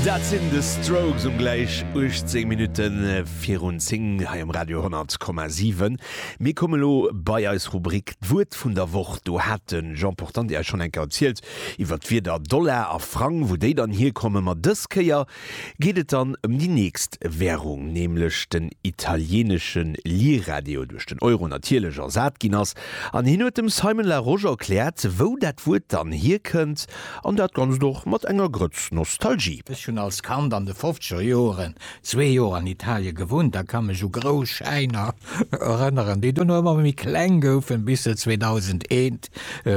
Dat sinn The Strokes um gläich 18 Minutte virun 10 hei um Radio 10,7. Mir komme lo bei eis Rubrik D'Wuert vun der Woch. Do hat de Jean Portante Iech schonn eng Kéier erzielt iwwer d'Wierder Dollar a Frang, wou déi dann hierkommen. Ma dës Kéier geet et dann ëm déi nächst Wärung, nämlech den italienesche Lira, dee jo duerch den Euro natierlech ersat ginn ass. An hien huet dem Simon Larosche erkläert, wou dat Wuert dann hierkënnt An dat Ganzt och mat enger Grëtz Nostalgie. Ech hunn als Kand an de fofzeger Joren zwee Joer an Italie gewunnt a ka mech u grouss Schäiner erënneren, déi duerno ëmmer méi kleng goufen, bis se 2001,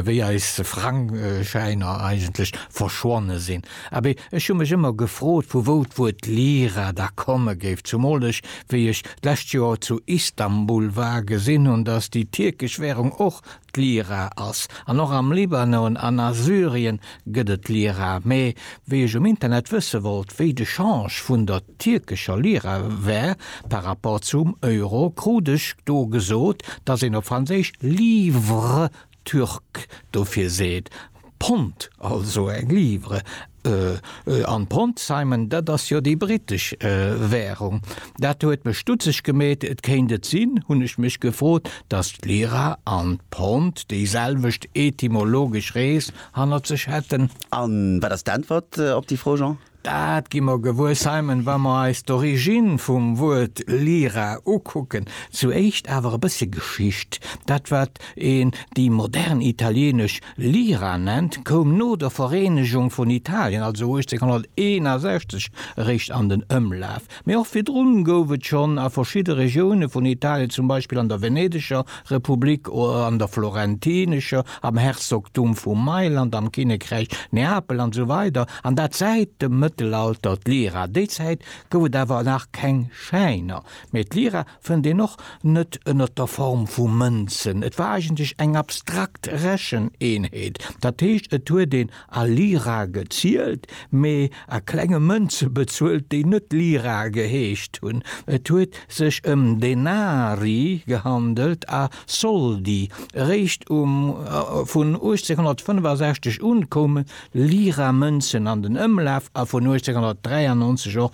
wéi eis Frangschäiner eigentlech verschwonne sinn. Abee, ech hu mech ëmmer gefrot, vu wou d'Wuert Lira da komme géif, zumool ech, wéi ech d'lescht Joer zu Istanbul war, gesinn hunn, dass déi tierkesch Währung och D'Lira ass, an och am Libanon an a Syrien gëtt et Lira, mee wéi ech um Internet wësse wollt, wéi de Change vun der tierkescher Lira wär par rapport zum Euro, krut ech do gesot, dass een op Franséisch livre turc dofir seet. Pond, also eng Livre. An d'Pond, Simon, dat ass jo déi britesch Währung. Dat huet mech stutzeg gemeet. Et kéint et sinn, hunn ech mech gefrot, datt d'Lira an d'Pond déiselwecht etymologesch Rees hannert sech hätten? A wat ass d'Äntwert op déi Fro, Jean? Dat gi mer gewuer, Simon, wa mer eis d'Origine vum Wuert Lyra ukucken. Zu éischt awer e bëssche Geschicht, Dat, wat een déi modern italieenesch Lira nennt, koum no der Vereenegung vun Italien, also 1861, eréischt an den Ëmlaf. Mee och virdrun gouf et schonn a verschidde Regioune vun Italien, zum Beispill an der Venedeger Republik, an der Florentinescher, am Herzogtum vu Mailand, am Kinnekräich Neapel an esou weider an dat säit dem Mëttelalter d'Lira. Déi Zäit gouf et awer nach keng Schäiner, mee d'Lira fënnt een och net ënnert der Form vu Mënzen, et war eigentlech eng abstrakt Recheneenheet, dat heescht et huet een a Lira gezielt, mee a klenge Mënze bezuelt, déi net Lira geheescht hunn. Et huet sech ëm Denari gehandelt a Soldi. Eréischt um vun 1865 un koume Lira-Mënzen an den Ëmlaf a vun 1893 och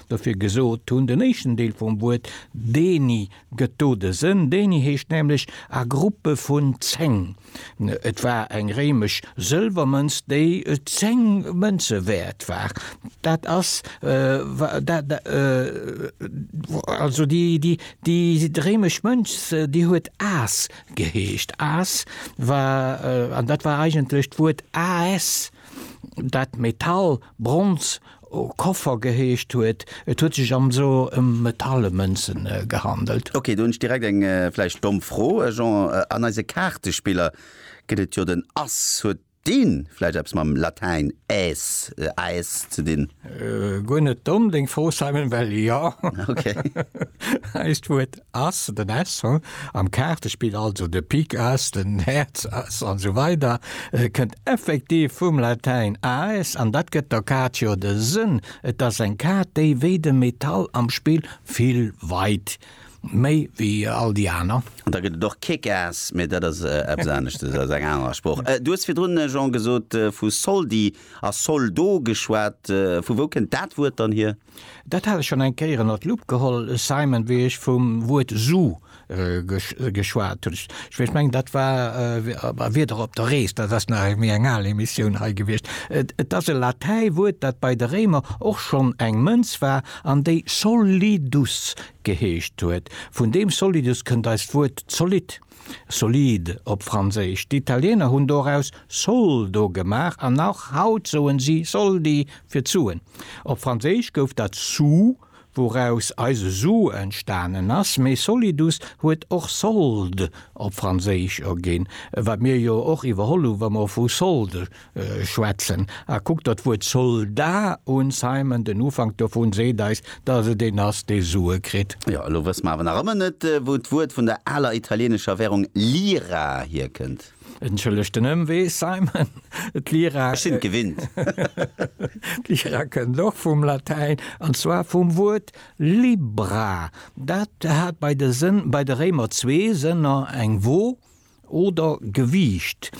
dofir gesot hunn, den éischten Deel vum Wuert deni gëtt do de Sënn, deni heescht nämlech a Gruppe vun zéng. Et war eng réimesch Sëlwermënz, déi zéng Mënze wäert war. Dat ass also déi réimesch Mënz, déi huet as geheescht. As war, an dat war eigentlech d'Wuert As, dat Metall, Bronz, O Koffer geheescht huet. Et huet sech am so ëm metalle Mënzen gehandelt. Ok, do hunn ech direkt eng vläicht domm Fro, Jean, an eise Kaartespiller gëtt et jo den Ass, huet deen vläicht eppes mam Latäin Äs, Aes, ze dinn? Guer net domm deng Fro Simon, well jo, Äis d'Wuert As, den As ho, am Kaartespill, also de Pik As, den Häerz As an esou weider, kënnt effektiv vum Latäin aes an dat gëtt der Kaart jo de Sënn. Et ass eng Kaart, déi wéi de Metall am Spill vill weit méi wéi all déi aner. An da gëtt et och Kick Ass, mee dat ass eppes aneschtes, ass eng aner Sprooch. Du hues virdrun, Jean, gesot, vu Soldi a Soldo geschwat. Vu wou kënnt dat Wuert dann hier? Dat hat ech schonn eng Kéier ënnert d'Lupp geholl, Simon, wéi ech vum Wuert Sue geschwat hunn. Ech mengen, dat war bei Wieder op der Rees, dat ass nach méi eng al Emissioun hei gewiescht. Et ass e Latäiwuert, dat bei de Réimer och schonn eng Mënz war an déi solidus geheescht huet. Vun deem solidus kënnt eist Wuert zolidd. Solide op Franséisch. D'Italiener hunn doraus Soldo gemaach an och haut soen si Soldi fir Suen. Op Franséisch gouf dat sou, wouraus eise Su entstanen ass, mee solidus huet och solde op Franséisch erginn, wat mir jo och iwwerholl hu wa mer vu solde schwätzen. A kuckt der d'Wuert Solda un, Simon, den Ufank dovun seet eis, dass et een ass, dee Sue kritt. Jo, elo wësse mer awer nach ëmmer net, wou d'Wuert vun der aler italieenescher Währung Lira hierkënnt. Entschëllegt den Ëmwee, Simon. D'Lira. Ech sinn et gewinnt. D'Lira kënnt och vum Latäin, an zwar vum Wuert Libra. Dat hat bei de Réimer zwee Sënner, eng Wo. Oder Gewiicht,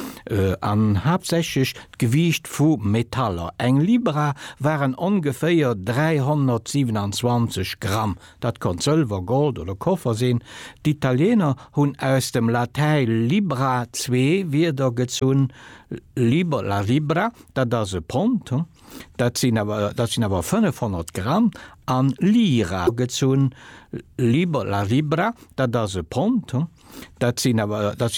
an haaptsächlech d'Gewiicht vu Metaller. Eng Libra waren ongeféier 327 Gramm. Dat konnt Sëlwer, Gold oder Koffer sinn. D'Italieener hunn aus dem Latäi libra zwee Wierder gezunn, liber, la libra, dat ass e Pond, Dat sinn awer, dat sinn awer 500 Gramm an Lira gezunn, Libra, Libra, dat ass e Pond, dat sinn awer, dat sinn.